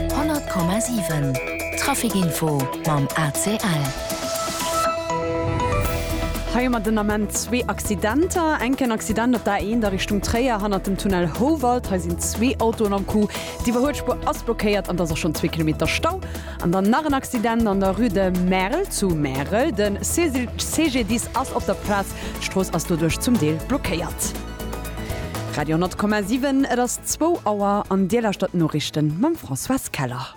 100,7 Traficinfo mam ACL. Hei hu mer den Ament zwee Accidenter. Enken Accident op der A1 a Richtung Tréier hannert dem Tunnel Houwald. Hei sinn zwee Autoen am Coup. D'Iwwerhuelspuer ass blockéiert an et ass och schonn zwee Kilometer Stau. An dann nach en Accident an der Rue de Merl zu Märel. De CGDIS ass op der Plaz. D'Strooss ass doduerch zum Deel blockéiert. Radio 10,7, et ass zwou Auer an Dir lauschtert d'Noriichten mam Françoise Keller.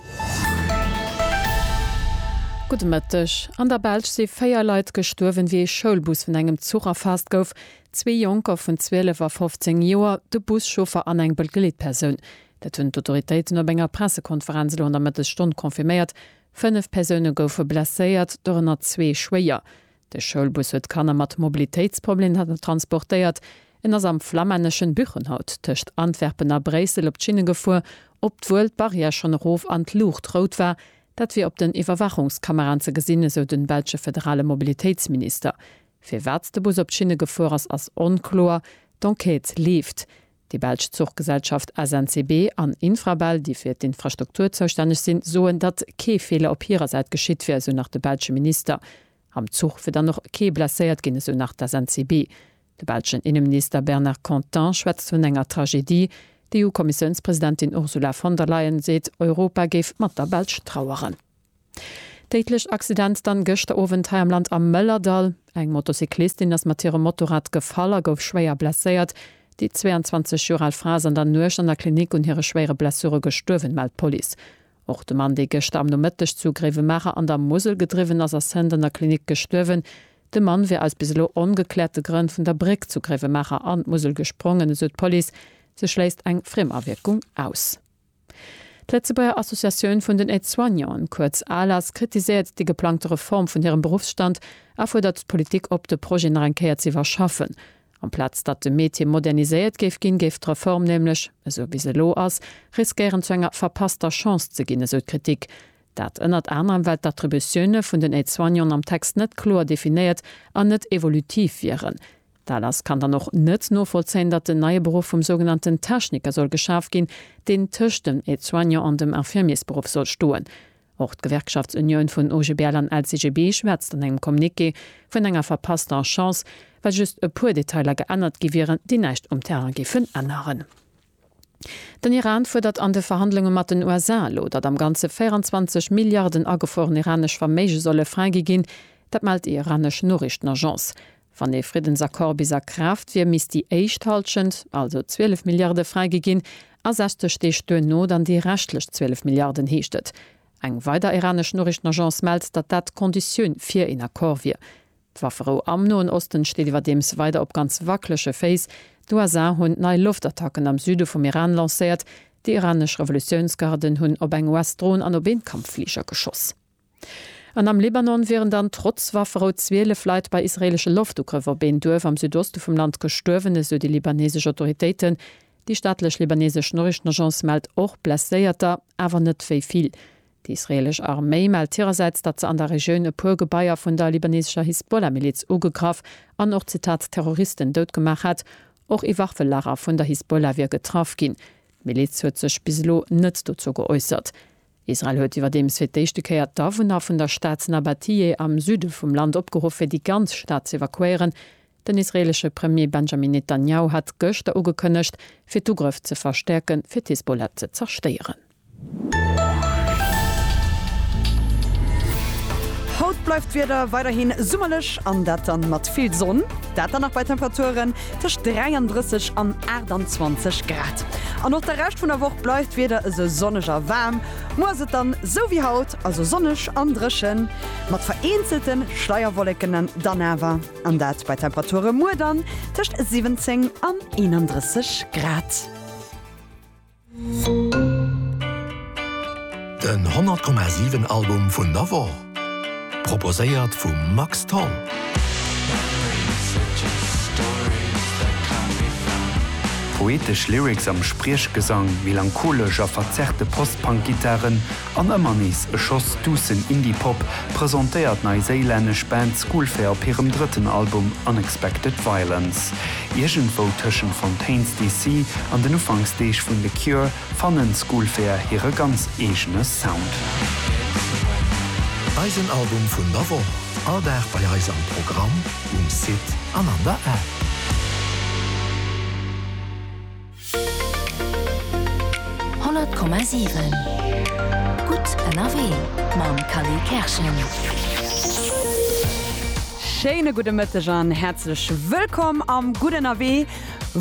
Gudde Mëtteg. An der Belsch si véier Leit gestuerwen, wéi ee Schoulbus vun engem Zuch erfaasst gouf. Zwee Jonker vun 12 a 15 Joer, de Buschauffer an eng Begleetpersoun. Dat hunn d'Autoritéiten op enger Pressekonferenz elo an der Mëttesstonn confirméiert. Fënnef Persoune goufe blesséiert, dorënner zwee schwéier. De Schoulbus huet Kanner mat Mobilitéitsproblemer transportéiert. En ass am flammänneschen Buchenhout tëscht Antwerpen a Bréissel op d'Schinne gefuer, obwuel d'Barrière schonn erof an d'Luucht rout war. Dat wier op den Iwwerwaachungskameraen ze gesinn, esou de belsche federale Mobilitéitsminister. Firwat de Bus op d'Schinne gefuer ass, ass onkloer. D'Enquête leeft. Déi belsch Zuchgesellschaft SNCB an Infrabel, déi fir d'Infrastruktur zoustänneg sinn, soen, datt kee Feeler op hirer Säit geschitt wier, esou nach de belsche Minister. Am Zuch wier dann och kee blesséiert ginn, esou nach d'SNCB. De belschen Inneminister Bernard Content schwätzt vun enger Tragedie. D'EU-Kommissiounspresidentin Ursula von der Leyen seet, Europa géif mat der Belsch traueren. Déidlech Accident dann gëschter Owend hei am Land am Mëllerdall. Eng Motocyclistin ass mat hirem Motorrad gefall a gouf schwéier blesséiert. Déi 22 Joer al Fra ass an der Nuecht an der Klinik un hire schwéiere Blessure gestuerwen, mellt d'Police. Och de Mann, dee gëschter am Nomëtteg zu Gréiwemaacher an der Musel gedriwwen ass, ass hënt an der Klinik gestuerwen. De Mann wier aus bis elo ongekläerte Grënn vun der Bréck zu Gréiwemaacher an d'Musel gesprongen, esou d'Police. Se schléisst eng Friemawierkung aus. D'Lëtzebuerger Associatioun vun den Aide-soignanten, kuerz ALAS, kritiséiert déi geplangte Reform vun hirem Beruffsstand a fuerdert d'Politik op, de Projet nach eng Kéier ze iwwerschaffen. Amplaz datt de Metier moderniséiert géif ginn, géif d'Reform nämlech, esou wéi se elo ass, riskéieren zu enger verpasster Chance ze ginn, esou d'Kritik. Dat ënnert anerem, well d'Attributioune vun den Aide-soignanten am Text net kloer definéiert an net evolutiv wieren. D'ALAS kann dann och net novollzéien, datt en neie Beruff vum sougenannten Techniker soll geschaf ginn, deen tëscht dem Aide-soignant an dem Infirmiersberuff soll stoen. Och d'Gewerkschaftsunioun vun OGBL an LCGB schwätzt an engem Communiqué vun enger verpasster Chance, well just e puer Detailer geännert gi wieren, déi näischt um Terrain géifen änneren. Den Iran fuerdert an de Verhandlunge mat den USA elo, datt am Ganze 24 Milliarden agefrueren iranesch Verméige solle fräigi ginn. Dat mellt déi iranesch Noriichtenagence. Wann ee Friddensaccord bis a Kraaft wier, misst déi éischt Hallschent, also 12 Milliarde fräigi ginn a 60 Deeg duerno dann déi reschtlech 12 Milliarden, heescht et. Eng weider iranesch Noriichtenagence mellt, datt dat d'Conditioun fir een Accord wier. D'Wafferou am Noen Osten steet iwwerdeems weider op ganz wackelege Féiss. D'USA hunn nei Loftattacken am Süde vum Iran lancéiert. Déi iranesch Revolutiounsgarden hunn op eng US-Dron an op een Kampffliger geschoss. An am Libanon wieren dann trotz Wafferou 12 Leit bei israeelesche Loftugrëffer op een Duerf am Südoste vum Land gestuerwen, esou déi libanesesch Autoritéiten. Déi staatlech libanesesch Noriichtenagence mellt och Blesséierter, awer net wéi vill. D'israeelesch Arméi mellt hirersäits, datt se an der Regioun e puer Gebaier vun der libanesescher Hisbollah-Miliz ugegraff an och, Zitat, Terroristen dout gemaach hätt. Och ee Waffelager vun der Hisbollah wier getraff ginn. D'Miliz huet sech bis elo net dozou geäussert. Israel huet iwwerdeems fir d'éischte Kéier d'Awunner vun der Stad Nabatiyeh am Süde vum Land opgeruff, fir déi ganz Stad z'evakuéieren. Den israeelesche Premier Benjamin Netanjahu hat gëschter ugekënnegt, fir d'Ugrëff ze verstäerken, fir d'Hisbollah ze zerstéieren. Haut bleift d'Wieder weiderhi summerlech an dat dann mat vill Sonn. Dat dann nach bei Temperaturen tëscht 33 an 28 Grad. An och de Rescht vun der Woch bleift d'Wieder esou sonneg a waarm. Muer ass et dann esou wéi haut, also sonneg an dréchen, mat vereenzelte Schleierwolleken dann awer, an dat bei Temperature muer dann tëscht 17 an 31 Grad. Den 100,7 Album vun der Woch, proposéiert vum Max Tholl. Poetesch Lyrics am Spriechgesang, melancholesch a verzerrte Post-Punk-Gittaren, An ëmmer nees e Schoss duussen Indie-Pop presentéiert d'neiséilännesch Band Schoolfair op hirem drëtten Album Unexpected Violence. Iergendwou tëschent Fontaines DC. an den Ufanksdeeg vun The Cure fannen Schoolfair hire ganz eegene Sound. Eisen Album vun der Woch, all Dag bei eis am Programm, um Site an an der App. 100,7 Gutt ënnerwee mam Khalil Kerschen. Schéine gudde Mëtteg an häerzlech wëllkomm am Gutt ënnerwee,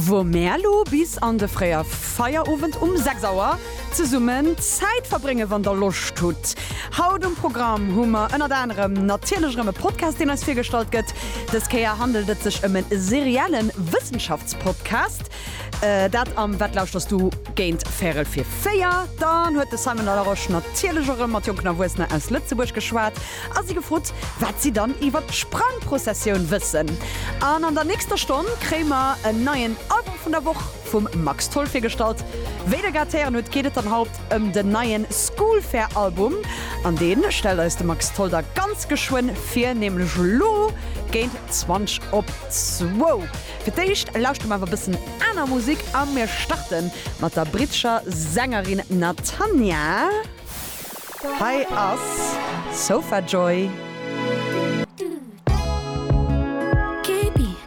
wou mär elo bis an de fréie Feierowend um 6 Auer zesummen Zäit verbréngen, wann der Loscht hutt. Haut um Programm hu mer ënnert anerem natierlech erëm e Podcast, deen eis virgestallt gëtt. Dës Kéier handelt et sech ëm e serielle Wëssenschaftspodcast. Dat am Wat lauschterst du? géint véierel fir véier. Dann huet de Simon La Roche natierlech erëm mat jonken Erwuessener aus Lëtzebuerg geschwat a si gefrot, wat si dann iwwer d'Sprangprozessioun wëssen. An an der nächster Stonn kréie mer en neien Album vun der Woch vum Max Tholl virgestallt. Wéi der grad héieren hutt, geet et dann haut ëm den neien Schoolfair-Album. An dee stellt eis de Max Tholl da ganz geschwënn vir, nämlech elo géint zwanzeg op zwou. Fir d'éischt lauschteren mer awer e bëssen aner Musik a mir starten mat der brittescher Sängerin Natanya. Hei ass Sofa Joy.